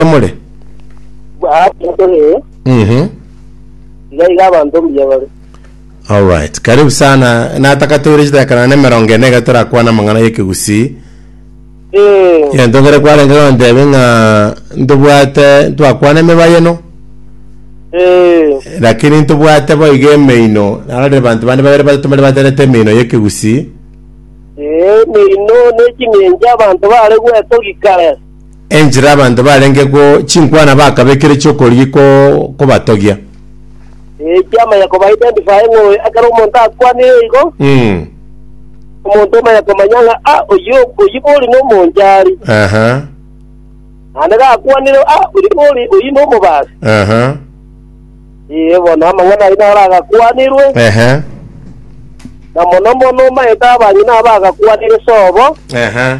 Emore. Bwaatokire, Mhm. iga iga abanto mbuya bare. Alright. Karibu sana. Nataka tore chitakana na emerongo ene iga torakwana amang'ana y'ekegusii. Eh, Yentongere kwarenge gontebe ng'a ntobwate ntwakwana emebayeno eh, lakini ntobwate boiga emeino narorire abanto bande babere batato mbare baterete emeino y'ekegusii eh, meino ne chimengi abanto bare gwetogika. Enchera abanto barenge go chinkwana bakabekire chi'okorigia ko kobatogia. Ekiama ya koba identify ng'a oyo ekero omonto akwanire igo, Mm. omonto omanya komanya ng'a ah, oyio oyio bori nomonchari. Aha. Naende gakwanire ah, oyio bori oyio nomobasi. Aha. Ee, bono amang'ana ayio naro agakwanirwe, Ehe. na mono mono omanyete abang'ina aba agakwanire sobo. Ehe.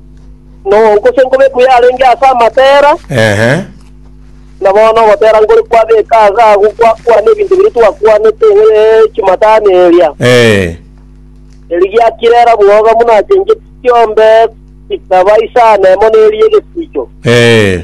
Noonko se nkobe buya arenge ase amatera, Ehe. na bono ogotera nkore kwabeka ase agwo gwakwana ebinto biria twakwanete eh, chimatano eria. Eh. Eri giakirera bwoga buna achencheti chiombe chikaba isano emo neri y'egesiicho. Eh.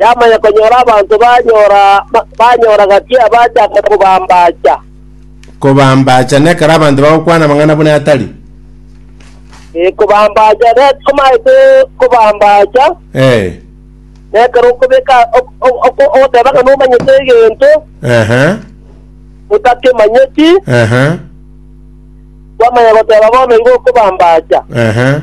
yamanya konyora abanto banyora banyora gati abachaka kobambacha. Kobambacha nekero abanto bagokwana amang'ana buna atari. Ee, kobambacha ne- komaete kobambacha, Eh. nekero okobeka ok- ok- ok- ogoteba ng'a nomanyete egento Aha. otakemanyeti, Aha. kwamanya goteba bono igo okobambacha. Aha.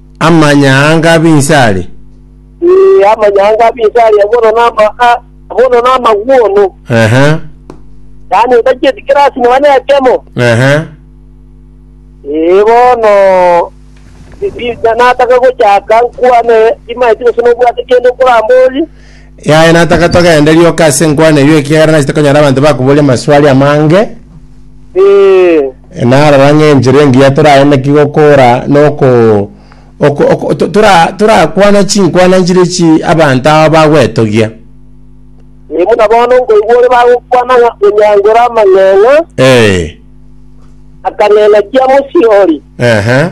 Amanyaanga ab'inse aria. Ee, amanyaanga ab'inse aria bono nama, a- bono namagw'ono, Ehe, yaani etachieti kirasi nonya nekemo. ehe. Ee, bono bi- bi- na- nataka gochaka nkwane, timaeti gose nobwate kende okoramboria. Yaya nataka togende rioka ase enkwana eyio ekiagera nachete konyora abanto bakoboria amaswali amange, Ee, narora ng'a enchera engiya toragende ki gokora noko oko- oko- to- tora- torakwana chinkwana nchire chi abanto aba bagwetogia ee, buna bono nkoigwa ore bagokwana ng'a onyangore amang'eng'a Eh, akang'eng'a kia mosihori. aha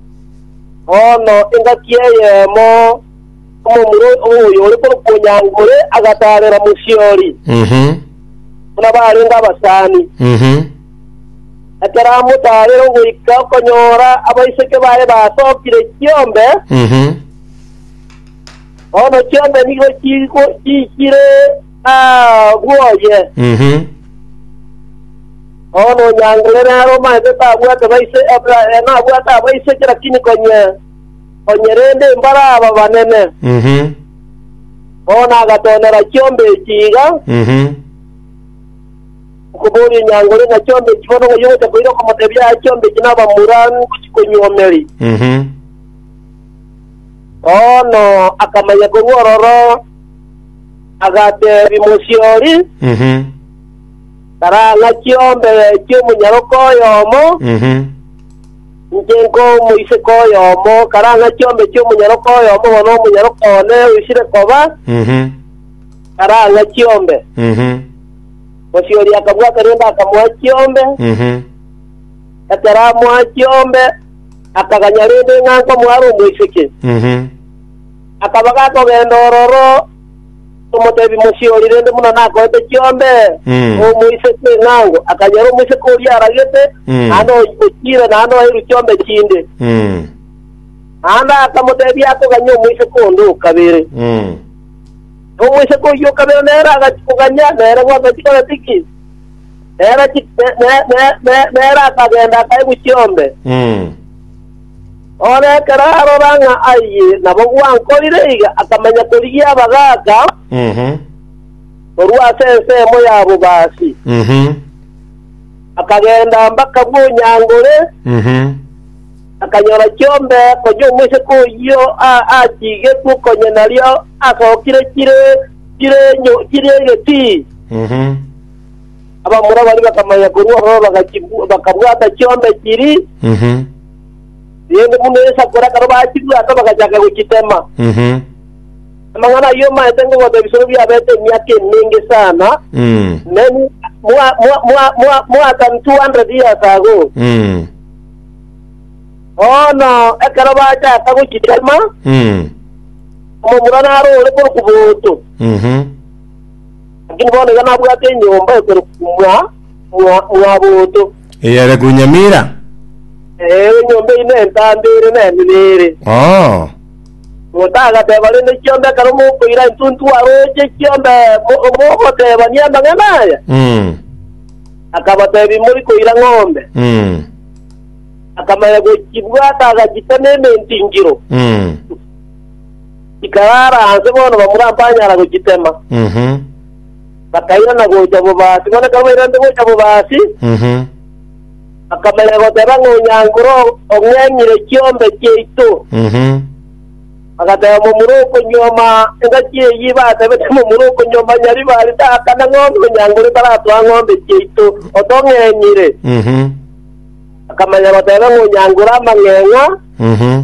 Bono engaki eyemo omomura oyore korokwa Onyangore agataarera Musiori, Mhm. buna barenge abasani. Mhm. Ekero amotaarire ogoika okonyora abaiseke baye basookire chiombe, Mhm. bono chiombe nigo chigo- chiikire Agwo oye. Mhm. Bono onyangerere are omanyete tabwate baise, abra, eh, nabwate abaiseke, lakini konye, konye rende mbare aba banene. Mhm. Bono agatonera chiombe echi iga, Mhm. okoboria enyangore ng'a chiombe echi bono ng'ai ogocha koira okomotebia aya chiombe echi nabamura ngochi konyuomeri. Mhm. Bono akamanya korwa ororo Agateebia mosiori, Mhm. Karang'a chiombe chi'omonyaroko oyomo, Mhm. inche nkomoiseke oyomo, karang'a chiombe chi'omonyaroko oyomo bono omonyaroko one oisire koba, Mhm. karang'a chiombe. Mhm. Mosiori akabwata rende akamoa chiombe, Mhm. ekero amoa chiombe, akaganya rende ng'a nkomoa are omoiseke. Mhm. Akaba gakogenda ororo, omotebi mochie oria rende buna nakoete chiombe, Mm. omoise ching'ango, akanyora omoiseke oria aragete, Mm. naende o- ochire, naende oeirwe chiombe chinde. Mm. Naende akamotebia akoganyia omoiseke onde o kabere. Mm. Na omoiseke oyio o kabere nere agachia koganyia, nere gwaka chikona tiki. Nere chi- ne- ne- ne- ne- nere akagenda akaigwa chiombe. Mm. Ore ekero arora ng'a ayie nabo gwankorire iga, akamanya korigia abagaaka korwa ase ensemo ya bobaasi, akagenda mpaka bw'onyangore, akanyora chiombe konya omoiseke oyio a- achigetwe konya nario asokire chire chire enyo- chire egetii. Abamura baria bakamanya korwa ororo bagachibw- bakabwata chiombe chiri, Mhm. rende buna esakura ekero bachibwata bagachaka gochitema. Mhm. Amang'ana ayio maete ngogota ebisoro biabete emiaka emenge sana, Mm. many more, more, more, more, more than 200 years ago. Mm. Bono ekero bachaka gochitema, Mm. omomura narore korwa kuboto. Mhm. Lakini bono iga nabwate enyomba ekorokwa mwa, mwa, mwaboto. Eyere Gunyamira. Ee, enyomba eyio nentambe ere nenene ere. Oo. Omonto agateba, rende chiomba ekero mokoira entuntu aroche chiomba mo- mogotebania amang'ana aya? Mm. Akabatebia, mori koira ng'ombe. Mm. Akamanya gochibwata agachitema ementingiro. Mm. Chikaraara aase bono bamura mbanyara gochitema. Mhm. Bakairana gocha bobasi, bono ekero bairanete gocha bobasi, Mhm. bakamanya goteba ng'a onyankore oo ong'enyire chiombe chiaito. Mhm. Bagateba momura okonyuoma engaki eyio, batebete momura okonyuoma nyaribari taakana ng'ombe, onyankore taratoa ng'ombe chiaito, otong'enyire. Mhm. Bakamanya goteba ng'a onyankore amang'eng'a, Mhm.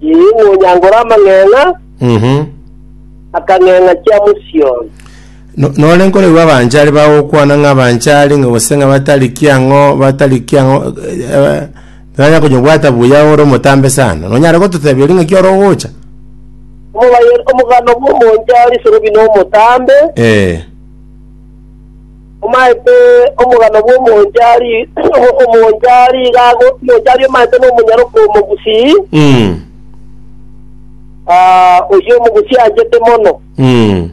Inee, monyangore amang'eng'a, Mhm. akang'eng'a chia Mosioni? No- Nore nkoregwa abanchari bagokwana ng'a abanchari ng'a gose ng'a batari kiang'o batari kiang'o eh, nanya konyobwata buya ore omotambe sana. Nonyare gototebia eri ng'aki ore ogocha? Omobaye- Omogano bw'omonchari sorobi nomotambe, Eh. Omaete omogano bw'omonchari, omonchari iga ago, omonchari omaete nomonyaroka omogusii, Mm. ah, oyio omogusii anchete mono. Mm.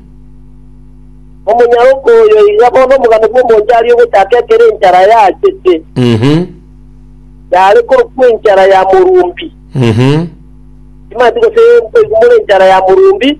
Omonyaroka oyo iga bono omogano bw'omonchari ogochaka ekero enchara yachete, Mhm. yare korokwa enchara ya morumbi. Mhm. Timanti gose nkoigumora enchara ya morumbi,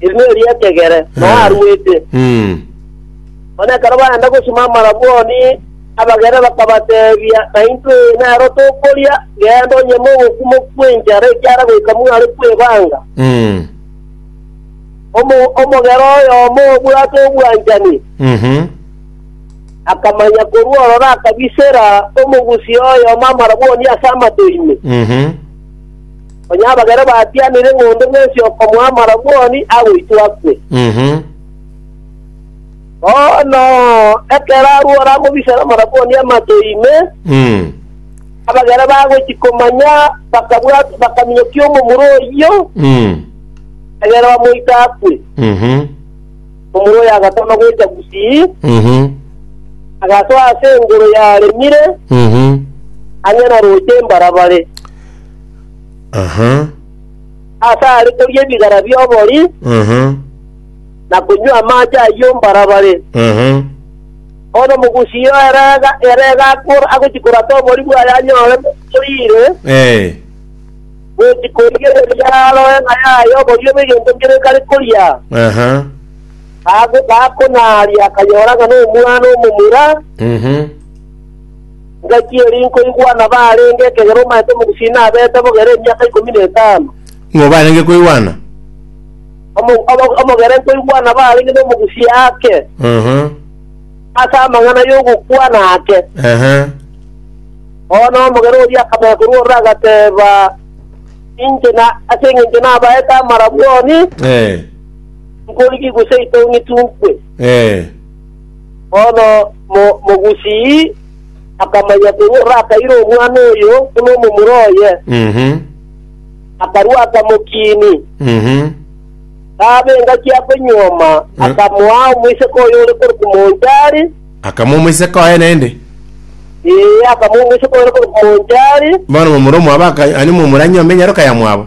Eriogi ri'ekegere, na Eh. arwete. Mm. Bono ekero baenda gosima amarabwoni, abagaire bakabateebia, Naintwe nero tokoria, genda onyeme ogokumo kw'enchara ekiara goika mware kw'ebaanga. Mm. Omo- Omogera oyomo obwate obwanchani Mhm. akamanya korwa ororo akabisera omogusia oyomo amarabwoni ase amato ime. Mhm. Onye abagere batianire ng'ondo bwensi okomoa amarabwoni, agoitwa akwe. Mhm. Bono ekero arue oramobisere amarabwoni amato ime, Mm. abagere bagochia komanya, bakabwat bakaminyokia omomura oyio, Mm. egere bamoite akwe. Mhm. Omomura oyo agatama gocha gusii, Mhm. agasoa ase engoro yaremire, Mhm. ang'e na roche embarabare. Aha. Ase are koria ebigara bi'obori, Aha. na konywa amaache ayio ombarabare. Aha. Bono omogusi oo ere ga- ere gakora agochia korata obori bwaye anyore boriire, Eh. gochia koigereria aroe ng'a yaye oborio bw'egento nkere kare koria. Aha. Gago- Gakonaaria akanyora ng'a nomwana omomura, Mhm. Gaki eri nkoigwa nabarenge ekegera omaete omogusii abete bogere emiaka ikomi na etano. Ng'o barenge koigwana? Omo- omo- omogere nkoigwa nabarenge nomogusii ake Aha. ase amang'ana y'ogokwana ake. Aha. Bono omogere oria akamanya korwa ororo agateba, Inche na ase engencho nabaete amarabwoni, Eh. nkorigigwe seito ng'itunkwe. Eh. Bono Mogusii akamanya korwa orakaire omwana oyo buna omomura oye, akarua akamokiini. Kaaba engaki akonyioma, akamoa omoiseke oye ore korwa Kumonchari, Akamoa omoiseke oye naende. ee, akamoa omoiseke oye ore korwa Kumonchari. Bono omomura omwabo akanywa, yaani omomura anywa amenyero kayamwabo.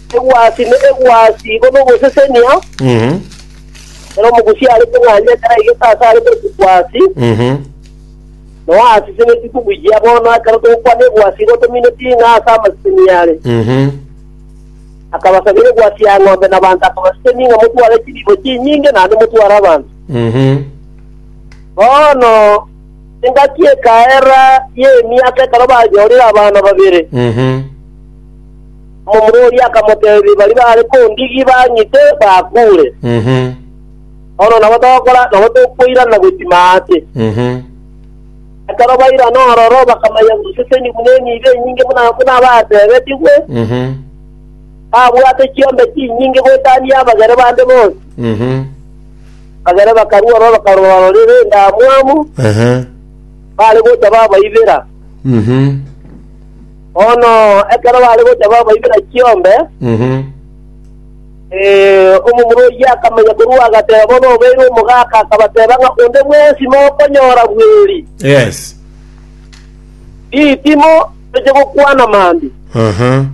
Egwasi ne egwasi igo nogosesenia, Mhm. ere omogusi are kong'anya taraigete ase are korokwa egwasi, Mhm. na oasesenieti kobuyia. Bono ekero togokwana egwasi igo tomineti ng'a ase amasesenia are. Mhm. Akabasabera egwasi ya ng'ombe na abanto akabaseseni ng'a motware chibibo chinyinge naende motware abanto. Mhm. Bono engaki ekaera y'emiaka ekero banyorire abana babere. Mhm. Omomori akamoteebia, Baria baare kondigi bang'ite, bakuure. Bono nabo togokora, nabo tokoirana gochima aase. Ekero bairana aroro, bakamanya guseseni buna emibe enyinge buna abateebetigwe, babwate chiombe chinyinge goetania abagere bande bonsi. Abagere bakarua ororo bakarora-rorera endamwamu, baare gocha babaibera. Bono ekero baare gocha babaibera chiombe, omomura oyio akamenya korwa agateba bono obeire omogaka, akabateba ng'a onde bwensi mokonyora bweri, Yes. ritimo toche gokwana mambia, Aha.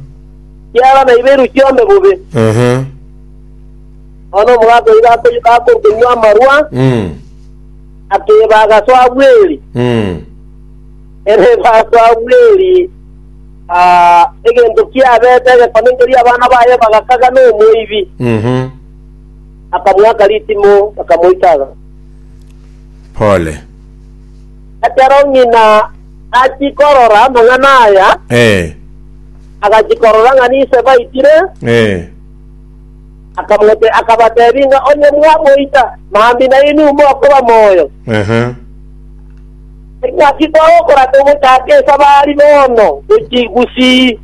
ekiagera naibeirwe chiombe bobe. Aha. Bono omogaka oyio gako- gakorukaniwa amarwa, Mm. akeba agasoa bweri. Mm. Ere Samueli aa egento kiabete egekone nkeria abana baye bagakaga nomoibi, akamoaka ritimo, bakamoitaga. Pole. Ekero ng'ina achia korora amang'ana aya, Eh. agachia korora ng'a ninse baitire, Eh. akamote akabatebia ng'a onye mwamoita, mambia nainwe mokoba moyo. Aha. Engaki togokora togochaka esabari bono gochia gusii.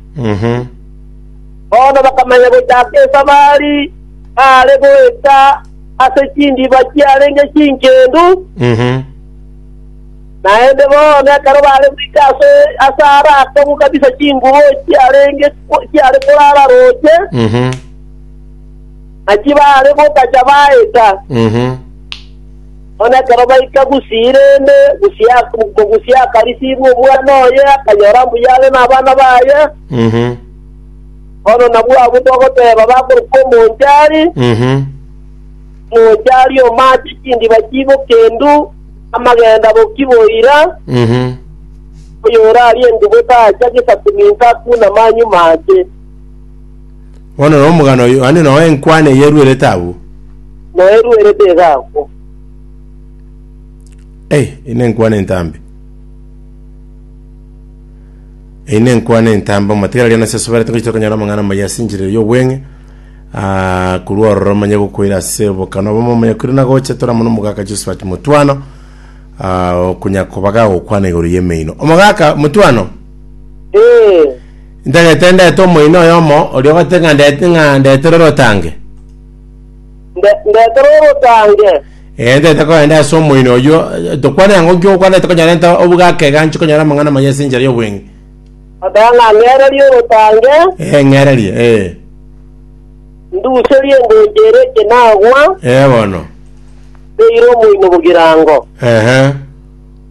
Bono bakamanya gochaka esabari baare goeta ase chindiba chiarenge chinkendu, naende bono ekero baare goika ase aare akong'u kabisa chingubo chiarenge chiare korara roche, na chibaare gotacha baeta. Bono ekero baika Gusi-Irene, mogusi akarisiibwa omwana oye, akanyora mbuya are nabana baye. Bono nabwo abwo togoteba bakoruka omonchari, omonchari omaache chindiba chiiboke endu, amagenda boki boira, oyorarie endubo taacha gesaku ninka akuna manyumache. Bono nomogano oyo, naende nao enkwana eye eruerete agwo. Moyo eruerete iga agwo. Ei, ei nenkwana entambe. Ei nenkwana entambe, omotiga riana ase asoberete ngochia tokonyora amang'ana amaya ase enchera eye y'obweng'e, ah, korwa ororo manye gokoira ase obokana obomo omanya koira na gocha tore amo nomogaka Josephat Mutwano, ah, okonya koba gagokwana igoro y'emeino. Omogaka Mutwano! Ee. Ntagete ndete omoina oyomo oria ogotete ng'a ndete ng'a ndetere orotange. Nde- Ndetere orotange. Eh, ntagete kogenda ase omoina oyio. Eh, Tokwane ng'a nki okwanete konyora nte obugake iga nchi konyora amang'ana maya ase enchera y'obweng'e. Oteba ng'a ngererie orotange, Eh, ng'ererie, eh. nduserie engoncho ere ekenagwa, Eh, bono. ndeire omoino bogirango. Ehe.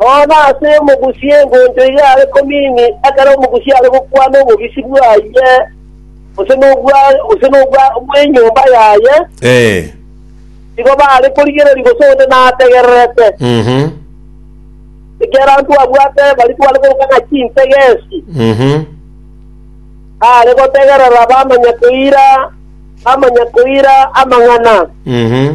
Nonya ase omogusie engoncho eyio are komini, ekero omogusie are gokwana obobisi bwaye, gose nobwa gose nobwa bw'enyomba yaye, Ee. nigo bare korigereria gose onde nategererete. Mhm. Ekiagera ntwabwate baria tware koroka ng'a chintegesi, Mhm. are gotegerera bamanya koira, bamanya koira amang'ana. Mhm.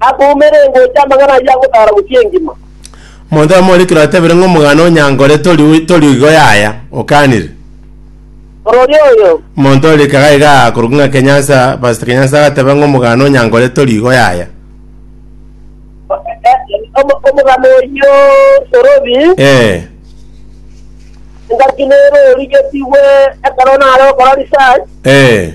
Akoumera engocha amang'ana ayio agotaara bosio engima. Omonto oyomoorikire otebire ng'a omogano onyankore tori tori igo yaya, okanire. Orori oyo. Omonto orikaga iga akorokwa ng'a Kenyansa, Pastor Kenyansa agateba ng'a omogano onyankore tori igo yaya. Omo- Omogano oyio torobi, Eh, engaki nere origetigwe ekero nare okora research, eh,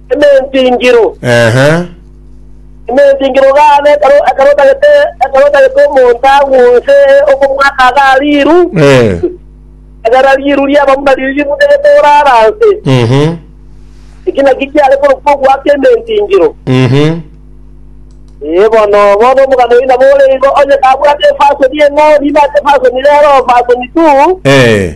Ementingiro. Ehe. Ementingiro gane ekero- ekero otagete ekero otagete omonto agwonse okomwaka aga riiru, Eh. egera riiru riaba buna riiri rimutegete orara nse. Mhm. Eki naki kiare korokwa ogwaka ementingiro. Mhm. Ee bono bono omogano oina bore igo onye kabwate efasoni eng'ao niba ase efasoni rero efasoni tu Eh.